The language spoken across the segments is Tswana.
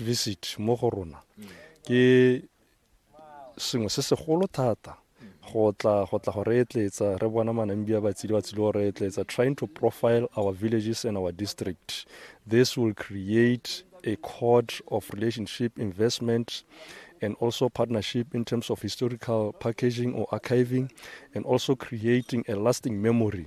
visit mo go rona ke sengwe se segolo thata go tla go tla go re etletsa re bona manambia batsile ba tsile go re etletsa trying to profile our villages and our district this will create a code of relationship investment and also partnership in terms of historical packaging or archiving and also creating a lasting memory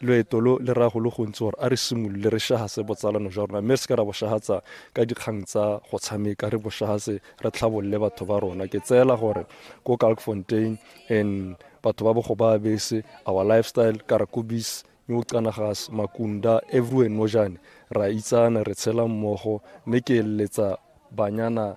Loeto lo le raya go le gontsi gore a re simolole re shahase botsalano jwa rona mme re seke ra bo shahatsa ka dikgang tsa go tshameka, re bo shahase re tlhabolole batho ba rona. Ke tseela gore ko Kalkfontein and batho ba Bogobabese, our lifestyle, Karakubis, New Canagas, Makunda, everywhere Nojane, ra itsana, re tshela mmogo mme ke eletsa banyana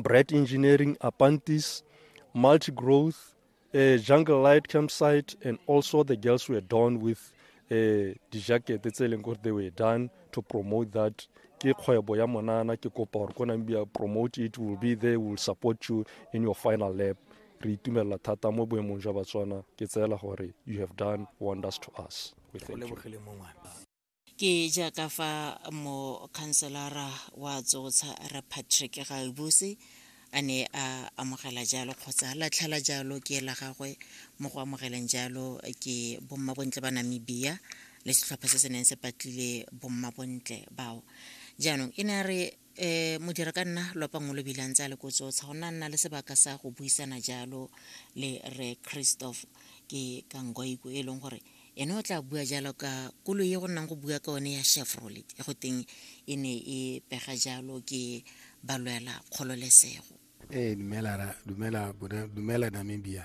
Bright Engineering, Apantis, Multi Growth, uh, Jungle Light Campsite, and also the girls were done with uh, eh, dijakete tse e leng gore they were done to promote that ke kgwebo ya monana ke kopa gore ko nang bia promote it will be there will support you in your final lap re itumelela thata mo boemong jwa batswana ke tseela gore you have done wonders to us Ke jaaka fa mokhanselara wa Tsotsha Rre Patrick Gaebuse a ne a amogela jalo kgotsa a latlhela jalo ke la gagwe mo go amogeleng jalo ke bommabontle ba Namibia le setlhopha se se neng se patlile bommabontle bao jaanong e ne a re um modira ka nna lopang o lo bilang tsa le kotsotsa go nna nna le sebaka sa go buisana jalo le re christoph ke kangoiko e leng gore ene o tla bua jalo ka koloi e go nnang go bua ka one ya chevrolet e go teng e ne e pega jalo ke balwela kgololesego ee dumela dumela dumela namibia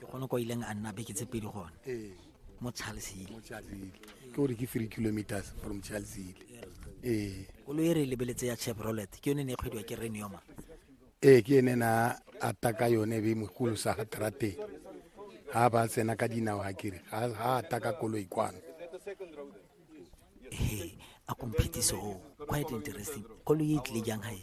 ke gone kwa ileng a nna beke tse pedi gone ee. mo charlesile ke gore ke three kilometers from charlesile ee koloi e re e lebeletse ya chevrolet ke yone ne e kgwediwa ke renioma ee ke ene na ata ka yone be mogolo sa ga trateng ga ba tsena ka dinao ga kere ga ata ka koloi kwano he a komphetiso o quite interesting koloi e tlile jang gae